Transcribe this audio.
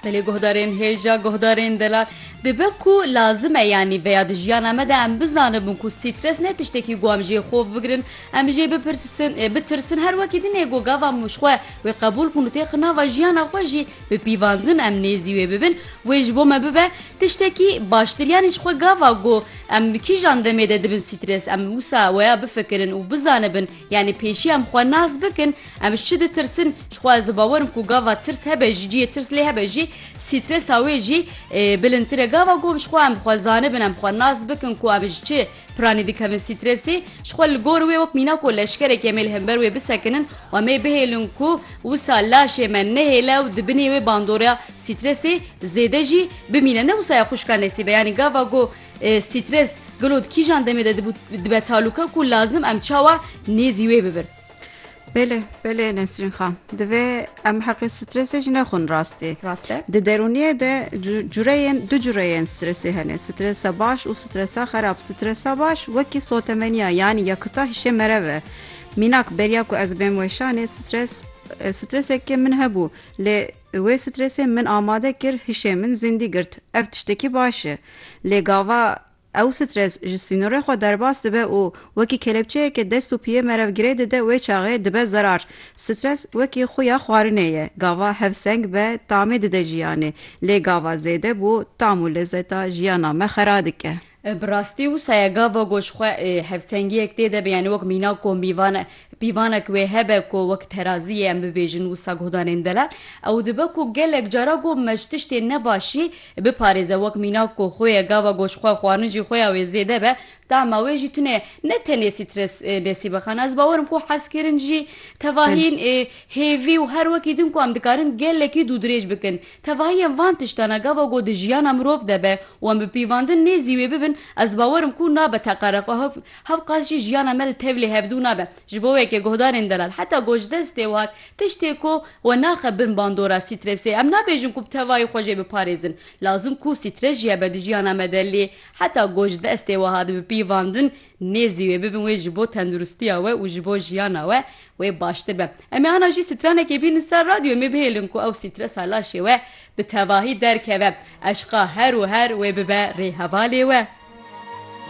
Belê guhdarên hêja guhdarên delal dibe ku lazim e yanî veya di jiyana me de em bizanibin ku sîtres ne tiştekî ku em jê xov bigirin em jê bipirsin bitirsin her wekî dinê ku gava xwe wê qebûl kun û tê xinava jiyana xwe jî bi pîvandin em nêzî wê bibin wê ji bo me bibe tiştekî baştir yanî ji xwe gava ku em kîjan demê de dibin sîtres em wisa weya bifikirin û bizanibin Yanî pêşî em xwe nas bikin, em ji çi ditirsin, jixwe ez bawer im ku gava tirs hebe jî cihê tirs lê hebe jî sîtresa wê jî bilindtir e. Gava ku em jixwe em bi xwe zanibin, em xwe nas bikin ku em ji çi piranî dikevin sîtresê, jixwe li gor wê wek mîna ku leşkerekî em ê li hember wê bisekinin û em ê bihêlin ku wisa laşê me nehêle û di binê wê bandora sîtresê zêde jî bimîne. Ne wisa ya xwişka nesîbe yanî gava ku Sîtres, gelo di kîjan demê de dibû dibe talûka ku lazim em çawa nêzî wê bibin? Belê belê Nesrîn xan divê em heqê stresê jî nexwin rastî rast e di derûniyê de cureyên du cureyên stresê hene stresa baş û stresa xerab stresa baş wekî sotemeniya yanî yakita hişê merev e mînak beriya ku ez bêm weşanê stres stresekê min hebû lê Wê stresê min amade kir, hişê min zindî girt. Ev tiştekî baş e. Lê gava ew stres ji sînorê xwe derbas dibe û wekî kelepçeyeke dest û piyê merev girê dide wê çaxê dibe zerar. Stres wekî xuya xwarinê ye. Gava hevseng be tamê dide jiyanê. Lê gava zêde bû tam û lezeta jiyana me xera dike. Bi rastî wisa ye gava ku ji xwe hevsengiyek tê de be yanî wek mîna ku mîvan e, pîvanek wê hebe ku wek teraziyê em bibêjin wisa guhdanên delal ew dibe ku gelek cara ku me ji tiştên nebaşî biparêze wek mîna ku xwe ye gava ku ji xwe xwarin jî xuya wê zêde be tahma wê jî tunê ne tenê sîtres nesîbe xan ez bawer im ku hezkirin jî tevahîn hêvî û her wekî din ku em dikarin gelekî dûdirêj bikin Tevahiyên van tiştan a gava ku di jiyana mirov de be û em bi pîvandin nêzî wê bibin, ez bawer im ku nabe teqere xwe hov. Hevqas jî jiyana me li tevlê hevdû nabe. Ji bo weke guhdarên delal heta gojdestê wihat, tiştê ku we naxe bin bandora strêsê. Em nabêjin ku bi tevahî xwe jê biparêzin. Lazim ku strês jî hebe di jiyana me de lê heta gojdestê wihat bi pîvandin Nêzî wê bibin wê ji bo tenduristiya we û ji bo jiyana we wê baştir be. Em ê ana jî stranekê bînin ser radyo em ê bihêlin ku ew stresa laşê we bi tevahî derkeve, eşqa her û her wê bibe rê hevalê we.